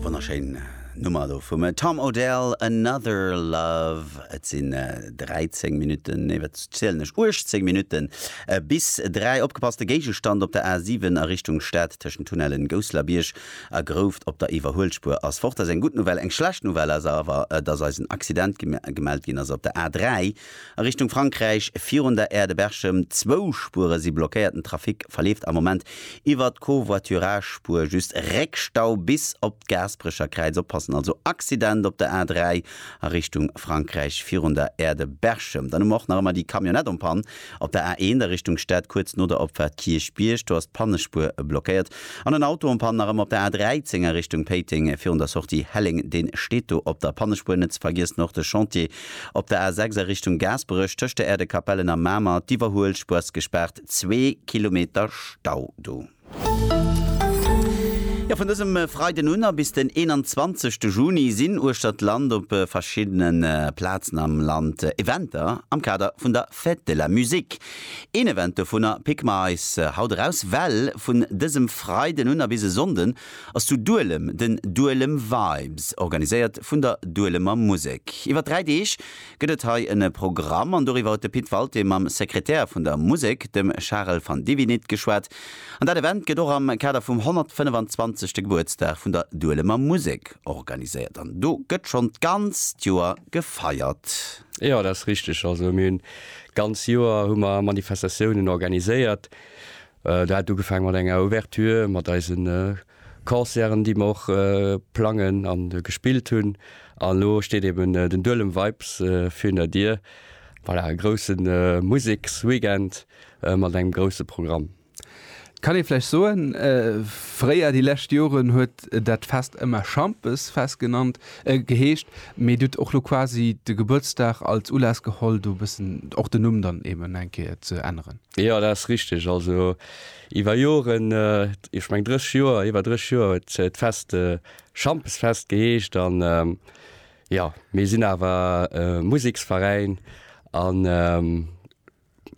Wonnerschéin Nummer do vum Tom Odell, Another Love. Et sinn 13 Minutten, nee, wat zielen ech, 18 Minutte bis dräi. Opgepasst, de Géigestand op der A7 a Richtung Stad tëschent Tunnellen Gousselerbierg a Grouft op der Iwwerhuelspuer ass fort. Dat ass eng gutt Nouvelle. Eng schlecht Nouvelle ass awer, dass eis en Accident gemellt ginn ass op der A3, A Richtung Frankräich virun der Aire de Berchem, zwou Spuere si blockéiert. Den Trafic verleeft am Moment iwwert d'Covoiturage-Spuer just. Réckstau bis op d'Gaasperecher Kräiz, oppassen also, Accident op der A3 a Richtung Frankräich virun der Aire de Berchem. Dann hu mer och nach ëmmer déi Camionnette en panne op der A1 a Richtung Stad, kuerz no der Opfahrt Kierchbierg, do ass d'Pannespuer blockéiert. An en Auto en panne nach ëmmer op der A13 a Richtung Péiteng virun der Sortie Helleng, dee steet do op der Pannespuer. Net ze vergiessen och de Chantier Op der A 6 a Richtung Gaasperech tëscht der Aire de Capellen a Mamer d'Iwwerhuelspur ass gespaart, zwee Kilometer Stau do. Jo, vun dësem Freiden un a bis den 21 de Juni sinn uechter d'Land op verschiddene Plazen am Land Eventer am Kader vun der Fête de la Musique. Een Event dovunner picke mer eis haut eraus, well vun dësem Freiden un a bis e Sonnden ass zu Duelem den Duelem Vibes, organiséiert vun der Duelemer Musek. Iwwer dräi Deeg gëtt et hei e Programm an doriwwer huet de Pit Walté mam Sekretär vun der Musek, dem Charel van Divinit geschwat. An dat Event gëtt och am Kader vum 125. Gebuertsdag vun der Duelemer Musek organiséiert an do gëtt schonn d'ganzt Joer gefeiert. Jo, dat ass richteg. Also mir hunn d'ganz Joer hu mer Manifestatiounen organiséiert. Dat hat ugefaang mat enger Ouverture mat eise Concerten, déi mer och plangen a gespillt hunn. An elo steet eben den Duelem Vibes virun Dier. Voilà, e grousse Museksweekend mat engem grousse Programm. Kann ee vläicht soen, fréier, déi lescht Joren, huet dat Fest ëmmer Schampesfest genannt, geheescht, mee Dir hutt och elo quasi de Gebuertsdag als Ulass geholl, do e bëssen och den Numm dann eben eng Kéier ze änneren? Jo, dat ass richteg. Also iwwer Joren, ech mengen 30 Joer, iwwer 30 Joer huet d'Fest Schampesfest geheescht. An jo, mir sinn awer e Museksveräin a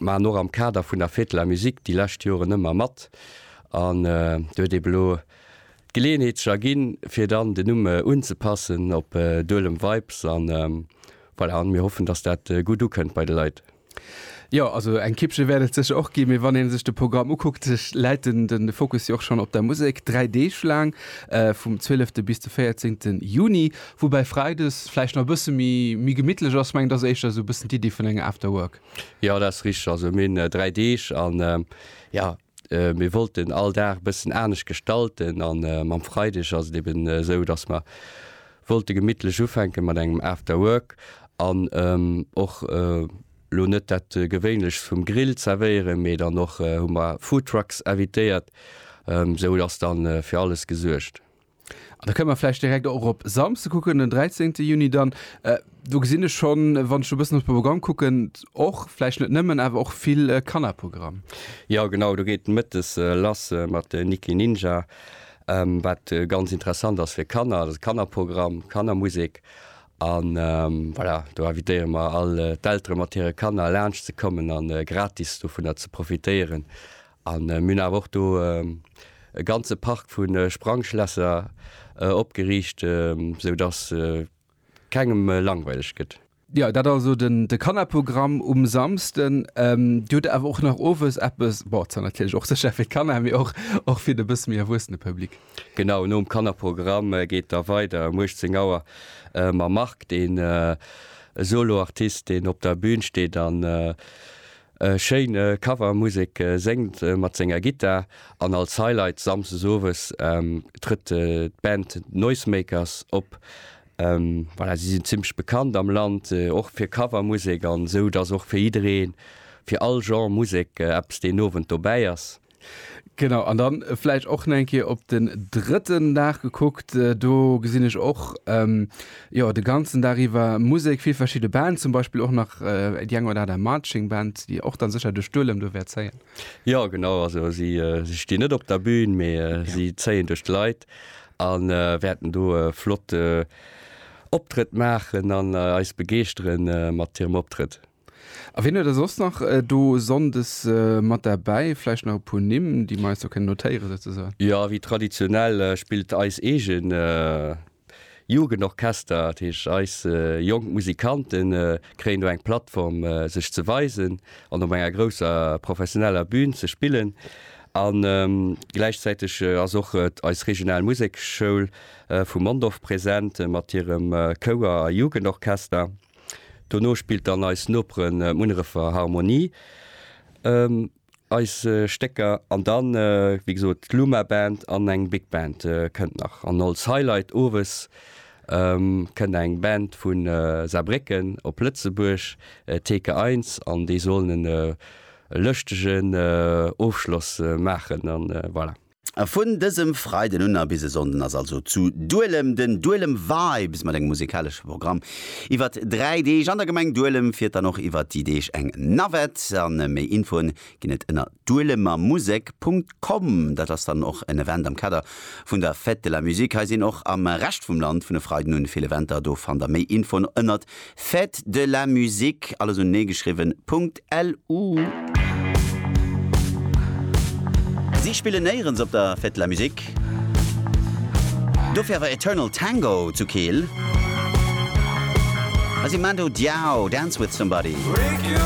maachen och am Kader vun der Fête de la musique déi lescht Joren ëmmer mat. An do huet eben elo d'Geleeënheet sech erginn, fir dann den Numm unzepassen op Duelem Vibes. An voilà, mir hoffen, datt dat gutt ukënnt bei de Leit. Jo, also eng Kippche wäert et sécher och ginn, mee wann ee sech de Programm ukuckt, läit den den Fokus jo och schonn op der Musek. Dräi Deeg laang, vum 12 bis de 14 Juni, woubäi Freides vläicht nach e bësse méi méi gemittlech ass. Mengen, et ass éischter esou e bëssen d'Iddi vun enger After Work. Jo, dat ass richteg. Also mir hunn dräi Deeg an, jo, Äh, mir wollten all Dag bëssen anescht gestalten an äh, mam Freideg ass et eben äh, sou, dass mer wollte gemittlech ufänke mat engem After Work an ähm, och äh, lo net dat äh, gewéinlechst vum Grill zerwéieren, mee dann och äh, hu mer Foodtrucks invitéiert, ähm, sou ass dann äh, fir alles gesuergt. An da kënne mer vläicht direkt och op Samsde kucken, den 13. Juni dann. Do gesinn ech schonn, wann ech e bëssen op d'Programm kucken, och, vläicht net nëmmen, awer och vill Kannerprogramm. Jo, genau, do geet mëttes lass mat Niki Ninja, wat ganz interessant ass fir Kanner. Dat ass e Kannerprogramm, Kannermusek. A voilà, do invitéiere mer all d'Eltere mat hire Kanner laanscht ze kommen a gratis dovunner ze profitéieren. A mir hunn awer och do e ganze Park vu Sprangschlässer opgeriicht, sou datt kengem langweileg gëtt. Jo, dat also de Kannerprogramm um Samsden. Dir hutt awer och nach owes eppes, bon, zwar natierlech och sécher fir d'Kanner, mee och fir de bësse méi erwuessene Public. Genau, nom Kannerprogramm geet da weider um 18 Auer mam Marc, deen e Soloartist, deen op der Bün steet an E schéin Cover, Musek séngt mat senger Gittar an als Highlight Samsdes Owes trëtt d'Band Noisemakers op. Voilà, si sinn zimmlech bekannt am Land och fir Cover Musek an esou dass och fir jiddereen, fir all Genre Musek eppes deen Owend dobäi ass. Genau, an dann vläicht och nach eng Kéier op den drëtten Dag gekuckt. Do gesinn ech och, jo, de ganzen Dag iwwer Musek, vill verschidde Bands, zum Beispill och nach déi eng oder aner Marching Band, déi och dann sécher de Stuerlem do wäert zéien. Jo, genau, also si stinn net op der Bühn, mee si zéien duerch d'Leit a wäerten do e flotte Optrëtt maachen an eis begeeschtere mat hirem Optrëtt. A wien huet der soss nach do Sonndes mat derbäi? Vläicht nach e puer Nimm, déi mer eis do kënnen notéieren, souzesoen? Jo, wéi traditionell spillt eis eegen Jugendorchester. Dat heescht, eis jonk Musikante kréien do eng Plattform, sech ze weisen an op enger grousser professioneller Bühn ze spillen. A gläichzäiteg ass och eis regional Musekschoul vu Mondorf present mat hirem Chouer a Jugendorchester. Dono spillt dann eis Noperen Munnerefer Harmonie eis Stécker an dann wéi gesot d'Luma Band an eng Big Band kënnt nach. An als Highlight owes kënnt eng Band vu Saarbrécken op Lëtzebuerg, Theke Eins, an déi sollen en lëschtegen Ofschloss maachen an voilà. Vun dësem Freiden un a bis e Sonnden ass also zu Duelem den Duelem Vibes mat engem musikalesche Programm iwwert 3 Deeg an der Gemeng Duelem. Fiert dann och iwwert déi Deeg eng Navette a méi Infoen ginn et ënner duelemermusek Punkt com. Dat ass dann och en Event am Kader vun der Fête de la Musique hei. Sinn och am Rescht vum Land vun e Freiden un vill Eventer. Do fannt der méi Infoen ënnert Fête de la musique, alles unenee geschriwwen, .lu. Si spillen néierens op der Fête de la musique, dofir awer Eternal Tango zu Keel. Hei si Mando Diao, Dance with somebody.